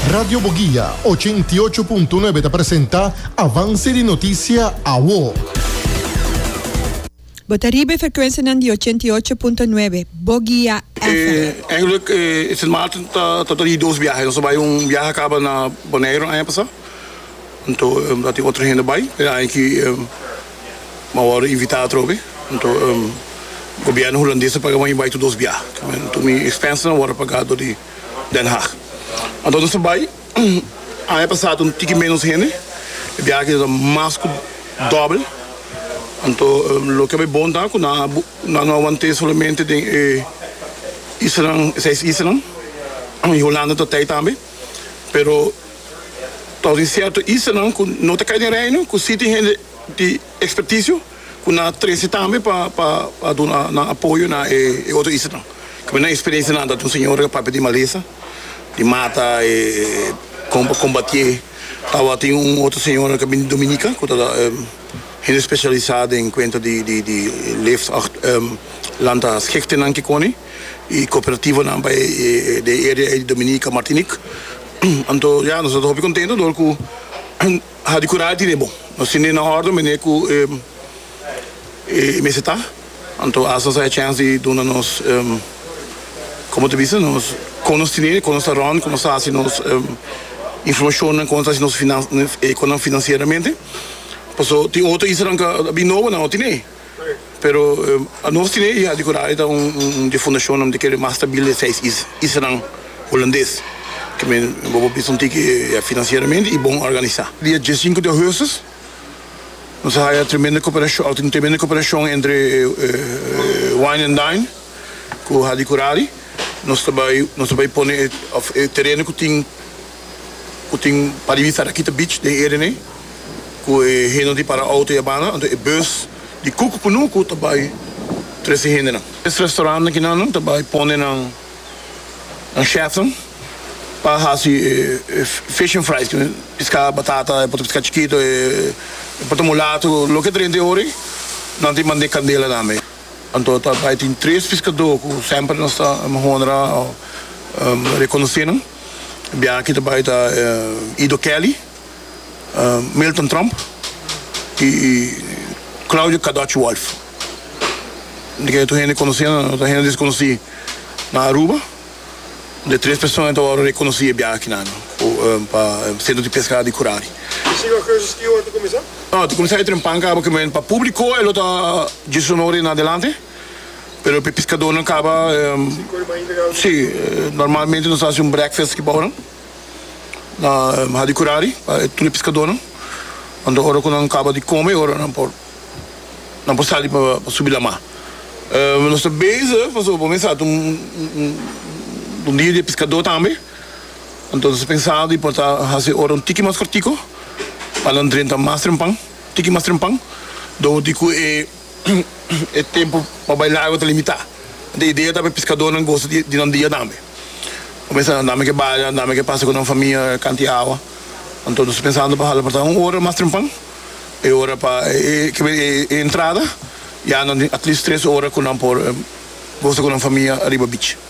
Radio Boguia ochenta i ocho punto nuebe ta presenta Avance di Noticia Awo. Bo ta riba e frekuensianan di ochenta i ocho punto nuebe Boguia FM. Eigenlijk is het maart tabata di dos biahe. Nos a bai un biahe a kaba na Boneiru aña pasá. Anto a tin otro hende bai. E aña aki bo a wòrdu invitá atrobe. Anto gobièrnu hulandes a paga bo bai tur dos biahe. Anto mi expensenan a wòrdu pagá dor di. Den Haag. Anto nos ta bai. Aña pasá ta un tiki ménos hende, e biaha akí ta ta mas ku dòbel. Anto loke bo e bon ta ku nan a nan no a want'é solamente den e islanan, e seis islanan. I Holanda ta t'ei tambe. Pero ta tin sierto islanan ku no ta kai den Reino ku sí tin hende di. experticio cu nan a trece tambe pa pa pa duna nan apoyo na e e otro islanan caminda nan experiencia nan ta un señor e papia di malesa di mata e comba combatié tawatin un otro señor ca bini di Dominica cu ta hende specialisa den cuenta di di di leeft acht lanta schikte nan kikoni y cooperativa nan pa e den area ey di Dominica Martinique anto ya nos ta hopi contento dor cu. Ha di cura tine bon. Nos tine na ordem mene cu e mester ta. Anto haci nos a e chance di duna nos, como ta bisa, nos con nos tine, con nos ta rond, con nos ta haci nos informacionnan, con nos ta haci nos finan, econan, financieramente. Paso tin otro issanan cu a bin nobo nan no tine. Pero anos tin e Iha di Curayo ta un di fundashonnan di kere mas stabil di e seis islanan Hulandes, ku mi bo por bisa un tiki ya finansieramente i bon organisá. Dia dies sinku di Augustus nos a haya tremendo koperashon, tin tremendo koperashon entre Wine and Dine ku Hadi Kurari, nos ta bai nos ta bai pone e tereno ku tin, ku tin pa di bista Rakita Beach den Erene ku e hende di para outo i a banda, anto e bus di Cook Punuku ta bai tres e hendenan. Es restaurant akinannan ta bai pone nan chefnan pa hasi e fish and fries, ku piská, batata, e por ta piská chikito, e por ta mulatu, loke ta dente ora ei, nan tin bandé kandela tambe. Anto ta bai tin tres piskadó ku semper nos ta honra o rekonosé nan. Bia aki ta bai ta Ido Kelly, Milton Trump y Claudio Kadoch Wolf. Di ke tur hende conoci anda no ta hende desconoci na Aruba. De tres persona ta worde reconoci e bia aki nan pa Centro di Pesca di Curari. No, ta cuminsa e trempan caba caminda pa publico e lo ta Jesús Honore na delante. pero p'e piskadónan kaba si normalmente nos ta hasi un brèkfèst aki bou nan na Hadi Kurari pa e tur e piskadónan anto ora ku nan kaba di kome e ora nan por nan por sali pa subi la mar nos ta beza pasobra bo mester sa ta un dia di e piskadó tambe anto nos ta pensa di por ta hasi e ora un tiki mas kòrtiku pa nan drenta mas trempan un tiki mas trempan dor di ku e. e tempu pa bai na agua ta limitá. Enton e idea ta pa e piskadónan gosa di di nan dia tambe. Bo pensa nan, dame ke baya, dame ke pasa ku nan famia e kanti awa. Anto nos ta pensando pa hala porta un ora mas trempan, e ora pa e ke men e e entrada, ya nan tin at least tres ora ku nan por gosa ku nan famia ariba bich.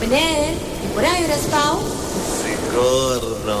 Meneer, mi por a yu respao? Sigur no.